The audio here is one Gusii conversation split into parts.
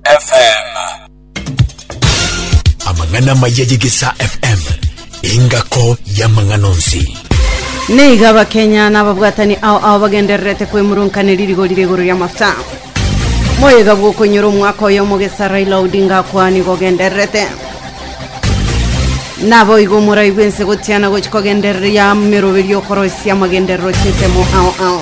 FM. Amang'ana amaya y'Egesaa FM, engako y'amang'ana onsi. Neiga Abakenya na ababwatani ao ao bagendererete kwemurunkaneri rigori rigoro ria mafuta. Moyega bw'okonyora omwaka oyo omogesa Raila Odinga akwani gogendererete. Nabo igo moraigwe ense gotiana gochi kogendereria meroberio okoroisia amagenderero chinsemo ao ao.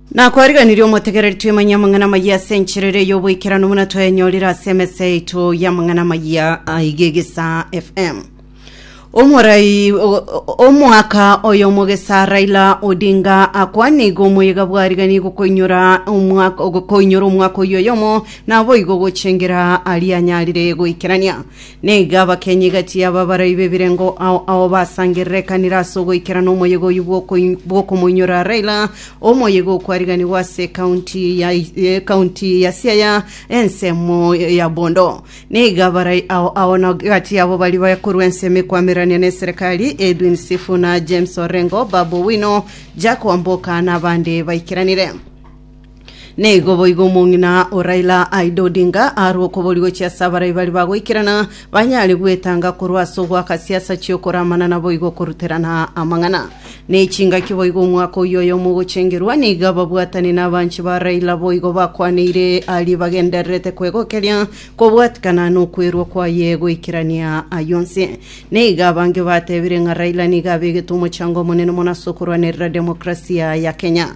Nakwariganirie omotegereri twemanye amang'ana amayia ase enchera eria y'oboikeranu buna twayenyorire ase emesa yaito y'amang'ana amayia aiga egesaa FM. Omorai o- o- omwaka oyo omogesa Raila Odinga akwane igo omoyega bwarigani gokoinyora omwaka gokoinyora omwaka oyo oyomo naboigo gochengera aria anyarire goikerania Nigo abakenyi egati y'ababarai b'ebirengo ao ao basangererekanire ase ogoikerana omoyega oyio bw'okoi- bw'okomoinyora Raila, omoyega okwariganigwa ase ekaunti ya ekaunti ya Siaya, ensemo ya Bondo. Nigo abarai ao ao na egati yabo baria bakorwa ensemo ekwamererania n'eserekari, Edwin Sifuna, James Orengo, Babu Owino, Jack Wamboka na abande baikeranire. Nigo boigo omong'ina o Raila Aida Odinga arue okobori gochia ase abarai baria bagoikerana banyare gwetanga korwa ase ogoaka siasa chi'okoramana naboigo okoruterana amang'ana. Nechingaki boigo omwaka oyio oyomo ogochengerwa nigo ababwatani na abanchi ba Raila boigo bakwaneire aria bagendererete kwegokeria kobwatikana nokwerwa kwaye goikerania ayio onsi. Nigo abange batebire ng'a Raila nigo abegete omochango omonene mono ase okorwanerera demokrasia ya Kenya.